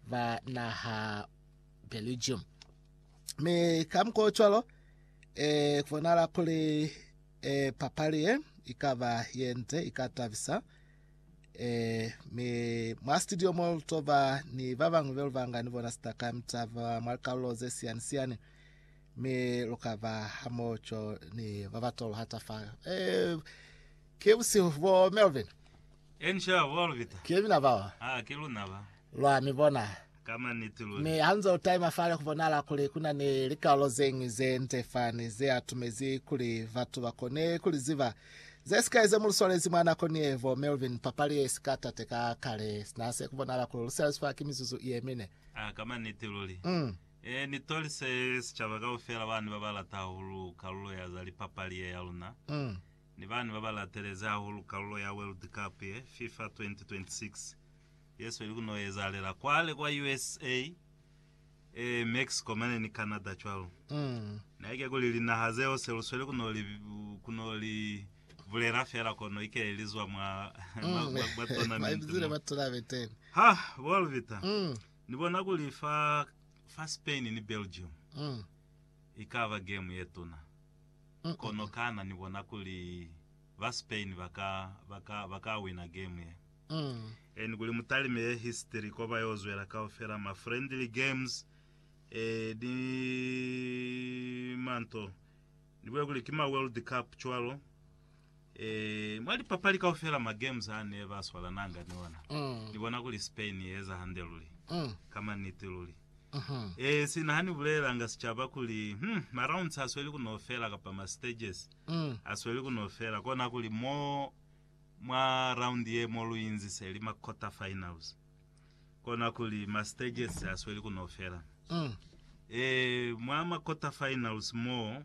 ba naha Belgium. Mi ka mukwa cwalo e, kubonahala kuli e, papali ye ikaba yenze ikatabisa e, mi mwa studio mo lutoba ni ba bangwe belo banga ni bona sitaka mitaba mwa likalolo ze siyani siyani mi lukaba hamoco ni ba batolo hata fa e, ke busihu bo Melvin Encia, bo Alvita. Ki mina bao. Ha ki luna ba. Lwa mi bona. Ka maniti luli. Mi hanze u taima fale ku bonahala kuli ku na ni likaulo ze ñwi ze nde fani ze atumezi kuli batu ba kone ku li ziba. Ze sikai ze mu lu swalezi mwa nako ni ye, bo Melvin, papali ye si ka tate ka kale. Sina se ku bonahala kuli lu selazi fa ki mizuzu ye mine. Ha, ka maniti luli. Um. E ni tolise sicaba kaufela bani ba ba lata hahulu kalulo ya za lipapali ye ya luna. Um. Ni bani baba latelezi hahulu kalulo ya World Cup ye, Fifa 2026, yesweli kuno ezahalela kwale kwa usa, e Mexico mane ni Canada cwalo. Naike kuli linaha zeo selusweli kuno li kuno li bulela fela kono ike lizwa mwa mwa mwa tournament mo. Ha, bo Alvita, ni bona kuli fa fa Spain ni Belgium ikaba game yetuna. Kono kana ni bona kuli ba Spain ba ka, ba ka, ba ka wina game ye? E, ni kuli mutalime ye history ko ba yo zwela kaufela ma friendly games, e, ni manto, ni bule kuli ki ma World Cup cwalo. Eee, mwa lipapali kaufela ma games a ne ba swalananga ni ona, Mm. ni bona kuli Spain i eza hande luli. Mm. Ka maniti luli. Mhm. Eee, sina ha ni bulelelanga sicaba kuli, hmm, ma rounds a sweli ku no fela kapa ma stages Mm. a sweli ku no fela, kona kuli mo mwa round ye mo lu inziseli ma quarter finals, kona kuli ma stages a sweli ku no fela. Mm. Eee, mwa ma quarter finals mo,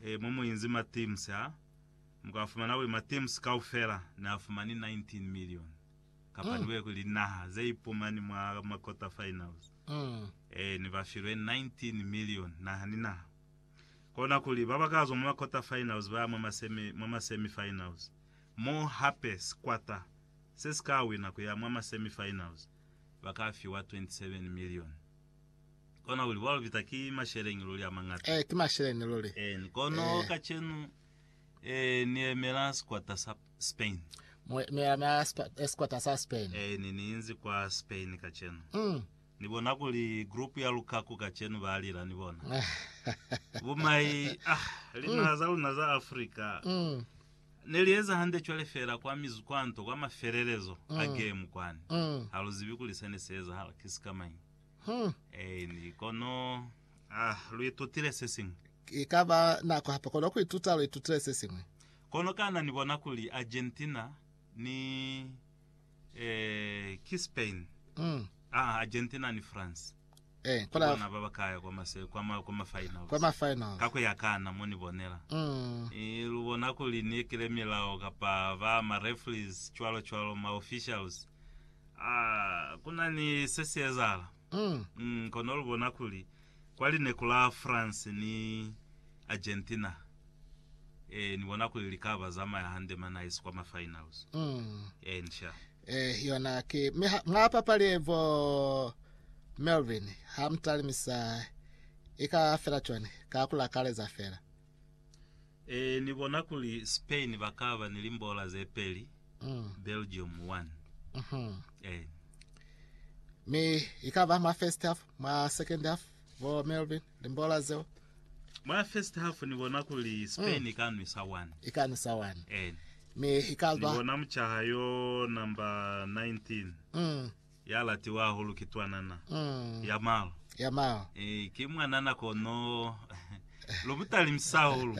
Ee, mo mu inzi ma teams a, mu ka fumana kuli ma teams kaufela ne a fumani 19 million, kapa ni kwe kuli linaha ze ipumani mwa ma quarter finals, ee, ne ba filwe 19 million naha ni naha. Kona kuli ba ba ka zwa mwa ma quarter finals ba ya mwa ma semi, mwa ma semi finals, mo hape sikwata se si ka wina ku ya mwa ma semi finals ba ka fiwa 27 million. Kona kuli bwa lupita ki masheleñi luli a mañata. Ee, ki masheleñi luli. Eeni. Kono Ee. kacenu Ee, Ni yemela sikwata sa Spain. Mu, mi yemela spa- eh, sikwata sa Spain. Eeni, Ni inzi kwa Spain kacenu. Mm. Ni bona kuli group ya lukaku kacenu ba lila, ni bona. Bumai, ah, linaha za luna za Africa. Mm. Ne li eza hande cwale feela kwa mizu kwa nto kwa mafelelezo a gemu kwani. Ha lu zibi kuli sene si ezahala ki sikamañi. Aini, kono ah, lu itutile sesiñwi. Ki ka ba nako hape kono ku ituta, lu itutile sesiñwi. Kono kana ni bona kuli Argentina ni. Eh, ki Spain, Mm. ah, Argentina ni France. Eh, Ki bona bona ba ba kaya kwa mase kwa ma kwa ma finals. kwa ma finals. Ka ku ya kana mo ni bonela. Mm. Eh, lu bona kuli ni ekile milao kapa ba ma referees cwalo cwalo ma officials. Ah, ku na ni se si ezahala. Mm. Mm, kono lu bona kuli kwa lineku la France ni Argentina Eh, ni bona kuli likaba zamaya hande ma nice kwa ma finals. Mm. Eh, ncha. Eh, yona ki mi ha- mwa papali bo Melvin ha mtalimisa i ka fela cwani ka ku lakaleza fela. Eh, ni bona kuli Spain ba ka ba ni limbola ze peli, Mm. Belgium 1. Mhm. Eh. Mi i ka ba mwa first half, mwa second half bo Melvin. Limbola zeo. Mwa first half ni bona kuli Spain mm. ka nwisa 1. Ika nwisa 1. Eh. Mi ika ba. Ni bona mchaha yo number 19. Mm. Ya latiwa hahulu ki twanana. Mm. Ya malo. Ya malo. Eh, ki mwanana kono lo mutalimisa hahulu.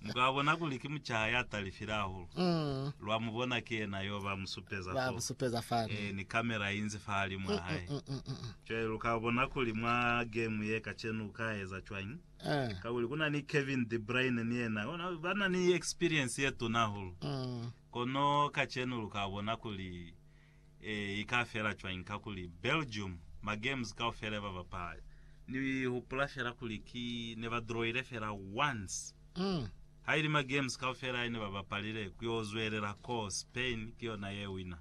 Muka bona kuli ki mchaha ya talifile hahulu. Mm. Lwa mu bona ki yena yo ba musupeza. Ba musupeza fani. Eh, ni kamera inzi fa hali mwa mm, mm, hae. Mm, mm, mm, mm. Cwale luka bona kuli mwa game ye kacenu uka eza cwañi, kakuli kuna ni Kevin De Bruyne ni yena bana ni experience ye tuna hahulu. Kono kacenu luka bona kuli ika fela cwañi, kakuli Belgium ma games kaufela yeba bapala. Ni hupula fela kuli ki neba drawile fela once, haili ma games kaufela yene ba bapalile kuyo zwelela ko Spain ki yona ye wina.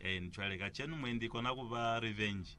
Eeni, cwale kacenu mwendi ikona kuba revenge.